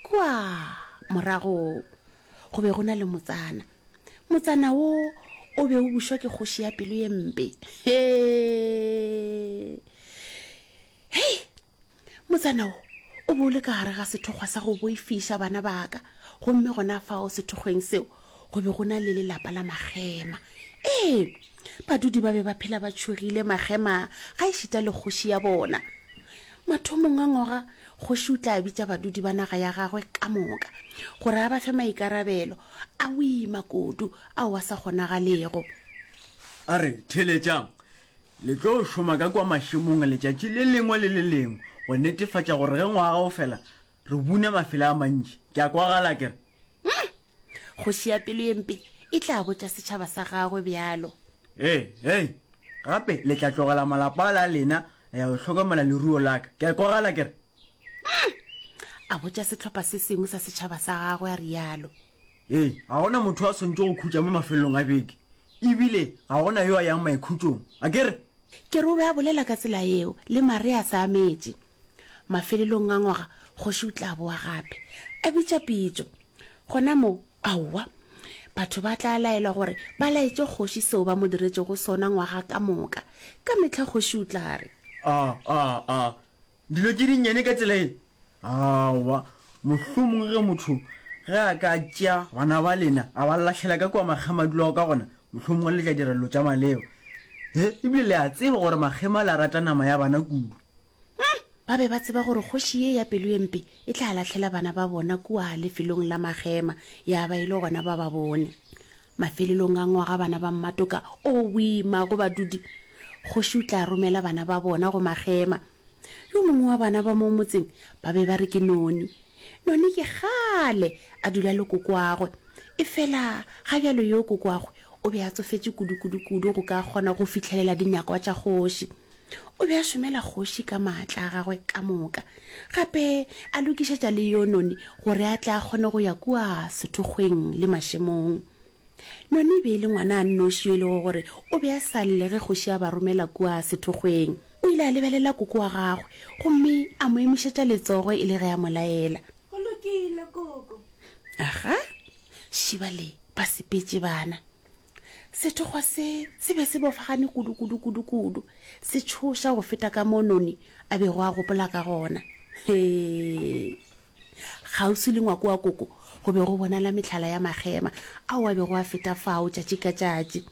kua morago go be go na le motsana motsana wo o be o bušwa ke kgoši ya pelo ye mpe hei motsana wo o be o le ka gare ga sethokgwa sa go boifiša bana baka gomme gona fao sethokgweng seo go be go na le lelapa la magema ee badudi ba be ba phela ba tšhogile magema ga e šita le kgoši ya bona mathomong a ngoga kgoši o tla bitša badudi ba naga ya gagwe ka moka gore a ba fe maikarabelo a o ima kodu ao a sa kgonagalego a re theletšang le tlo šoma ka kwa mašemong letšatši le lengwe le le lengwe go netefatša gore ge ngwaga o fela re bune mafela a mantši ke a kwagala kere hmm, Kgoši ya pelo ye mpe e tla botša setšhaba sa gagwe bjalo. Ee, ee, gape le tla tlogela malapa ala a lena la ya go hlokomela leruo la ka. Ke a kwagala ke re. Umm! a botša sehlopha se sengwe sa setšhaba sa gagwe a realo. Ee, ga go na motho yo a swantšego go khutša mo mafelelong a beke, e bile ga go na yo a yang maikhutšong, a ke re? Ke re o be a bolela ka tsela yeo le Maria a sa ametše. Mafelelong a ngwaga, kgoši o tla boa gape, a bitša pitšo. Gona moo, aowa, batho ba tla laelwa gore ba laetše kgoši seo ba mo diretšego sona ngwaga ka moka. Ka mehla kgoši o tla re. A, a, a dilo tše dinnyane ka tsela ye? Aowa. Mohlomongwe ge motho ge a ka tšea bana ba lena a ba lahlela ka kua makgemadulago ka gona, mohlomongwe le tla dira dilo tša maleba. He, e bile le a tseba gore makgema le a rata nama ya bana kudu. Umm! Ba be ba tseba gore kgoši ye ya pelo e mpe e tla lahlela bana ba bona kua lefelong la magema, ya ba e le gona ba ba bone. Mafelelong a ngwaga bana ba Mmatoka, owii, mago badudi! Kgoši o tla romela bana ba bona go magema. Yo mongwe wa bana ba mo motseng ba be ba re ke Noni. Noni ke kgale a dula le kokoagwe, efela ga bjalo yo kokoagwe o be a tsofetše kudu-kudu-kudu go ka kgona go fihlelela dinyakwa tša kgoši. O be a šomela kgoši ka maatla a gagwe ka moka, gape a lokišetša le yo Noni gore a tle a kgone go ya kua sethokgweng le mašemong. Noni e be e le ngwana a nnoši yo e lego gore o be a sa lle ge kgoši a ba romela kua sethokgweng. O ile a lebelela koko wa gagwe gomme a mo emišetša letsogo e le ge a mo laela. Go lokile, koko. Aga, šiba le ba sepetše bana. Sethokgwa se se be se bofagane kudu-kudu-kudu-kudu, se tšhoša go feta ka mo Noni a bego a gopola ka gona. Hee! Kgauswi le ngwako wa koko go be go bonala mehlala ya magema ao a bego a feta fao tšatši ka tšatši.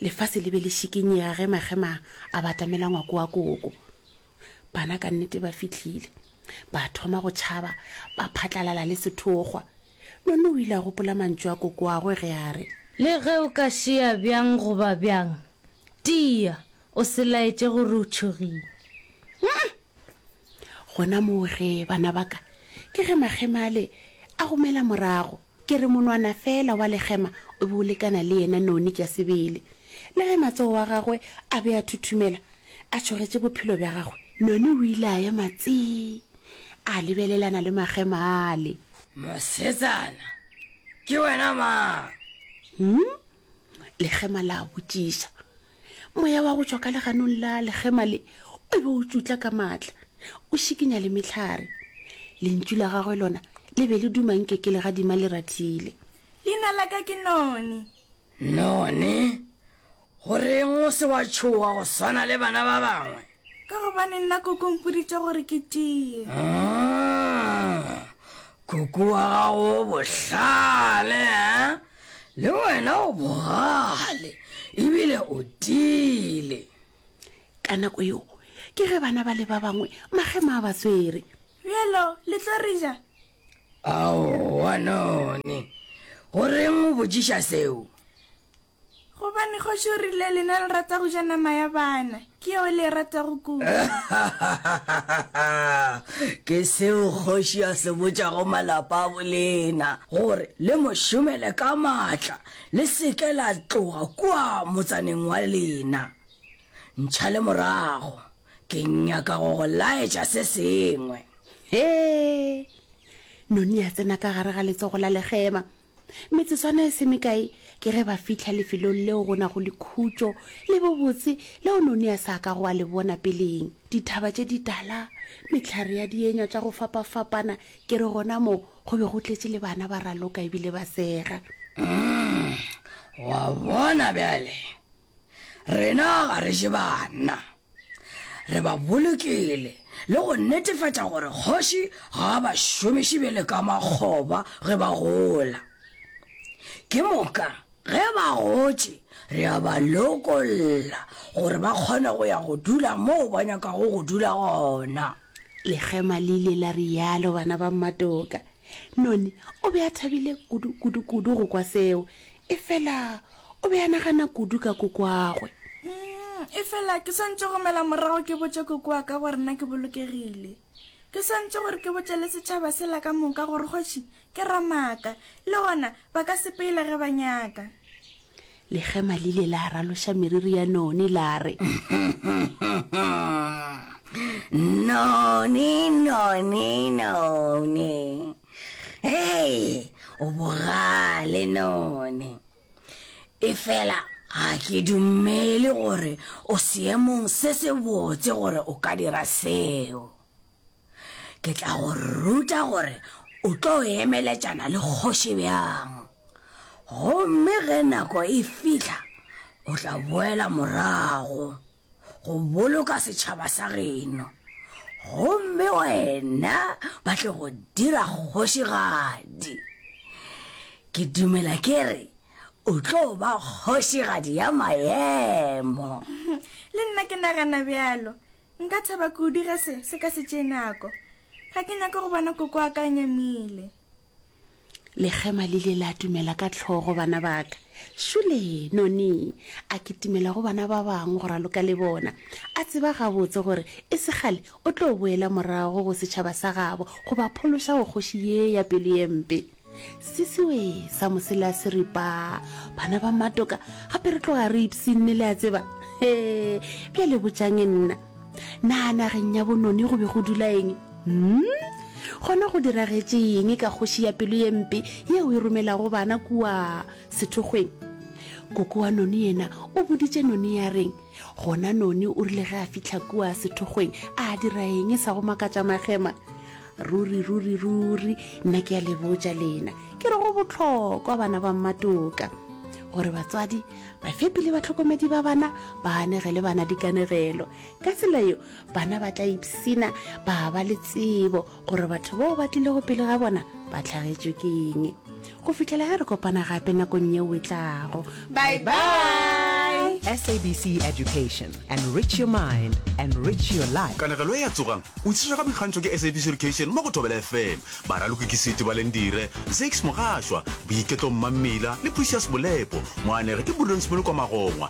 Lefase le be le šikinyega ge magema a batamela ngwako wa koko. Bana ka nnete ba fihlile. Ba thoma go tšhaba, ba phatlalala le sethokgwa. Nonno o ile a gopola mantšu a kokoagwe ge a re. Le ge o ka šea bjang goba bjang, tia, o se laetše gore o tšhogile. Umm! Gona moo ge, bana ba ka, ke ge makgema ale a go mela morago. Ke re monwana feela wa lekgema o be o lekana le yena noni tša sebele. Le ge matsogo a gagwe a be a thuthumela, a tšhogetše bophelo bja gagwe, noni o ile a ema tsii, a lebelelana le makgema ale. Mosetsana, ke wena mang? Hmm? Legema la botšiša. Moya wa go tšwa ka leganong la legema le o be o tšutla ka maatla, o šikinya le mehlare. Lentšu la gagwe lona le be le duma nke ke legadima le ratile. Leina la ka ke Noni. None, go reng o se wa tšhoga go swana le bana ba bangwe? Ka gobane nna koko mpoditše gore ke tiye. Ah, koko wa gago o bohlale, eh? Le wena o bogale, ebile o tiile. Ka nako yeo, ke ge bana ba le ba bangwe magema a ba tswere. Bjalo, le tlo re ja, Aowa, none. Go reng o botšiša seo? Gobane kgoši o rile, Lena le rata go ja nama ya bana. Ke yeo le e ratago kudu. Ke seo kgoši a se botšago malapa a bolena, gore le mo šomele ka matla, le se ke la tloga kua motsaneng wa lena. Ntšhale morago. Ke nyaka go go laetša se sengwe. He! Noni a tsena ka gare ga letsogo la legema. Metsotswana e se mekae ke ge ba fihla lefelong leo go nago lekhutšo le bobotse leo Noni a sa ka go a le bona peleng. Dithaba tše ditala, mehlare ya dienywa tša go fapafapana, ke re gona mo go be go tletše le bana ba raloka ebile ba sega. Umm, wa bona bjale? Rena ga re je banna. Re ba bolokile le go netefatša gore kgoši ga a ba šomiše bjale ka makgoba ge ba gola. Ke moka ge ba gotše re a ba lokolla gore ba kgone go ya go dula moo ba nyakago go dula gona. Lekgema le ile la realo bana ba Mmatoka. Noni o be a thabile kudu-kudu-kudu go kwa seo, Efela o be a nagana kudu ka kokoagwe. Efela ke swanetše go mela morago ke botše koko wa ka gore na ke bolokegile. Ke swanetše gore ke botše le setšhaba sela ka moka gore kgoši ke ramaaka, le gona ba ka sepeila ge ba nyaka. Legema le ile la raloša meriri ya Noni la re. Noni, Noni, Noni! Hei, o bogale none. Efela ga ke dumele gore o seemong se se botse gore o ka dira seo. Ke tla go ruta gore o tlo emeletšana le kgoši bjang. Gomme ge nako e fihla, o tla boela morago. go boloka setšhaba sa geno, gomme wena ba tle go dira kgošigadi. Ke dumela ke re o tlo ba kgošigadi ya maemo. Le nna ke nagana bjalo. Nka thaba kudu ge se se ka se tšee nako. Ga ke nyake go bona koko wa ka a nyamile. Lekgema le ile la dumela ka tlhogo, Bana ba ka, šole noni a kitimela go bana ba bangwe go raloka le bona, a tseba gabotse gore e se kgale o tlo boela morago go setšhaba sa gabo go ba phološa go kgoši ye ya pelo ye mpe. Sisiwe sa mosela se re, Pa, bana ba matoka, gape re tloga re ipshinne, le a tseba. Hee, bjale botšang nna. Na nageng ya bonone go be go dula eng? Hmm? Gona go diragetše eng ka kgoši ya pelo ye mpe yeo e romelago bana kua sethokgweng? Koko wa none yena o boditše none ya reng? Gona none o rile ge a fihla kua sethokgweng a dira eng sa go makatša magema? ruri ruri ruri nna ke ya le botša lena ke re go bohlokwa bana ba mmatoka gore batswadi bafepi le batlhokomedi ba bana ba anegele bana dikanegelo ka tsela yo bana ba tla ipsina ba ba le tsebo gore batho bao ba tlilego pele ga bona ba tlhagetswe keng Go fihlela ge re kopana gape nakong yeo e tlago. Bye bye! SABC Education. Enrich your mind. Enrich your life. Kanegelo e a tsogang o itshetšwa ka boikgantšho ke SABC Education mo go Thobela FM. Baraloki ke Siti Balendire, Zakes Mogashwa, Boiketlo Mmammila le Precious Molepo. Moanegi ke Prudence Molokwa Magongwa.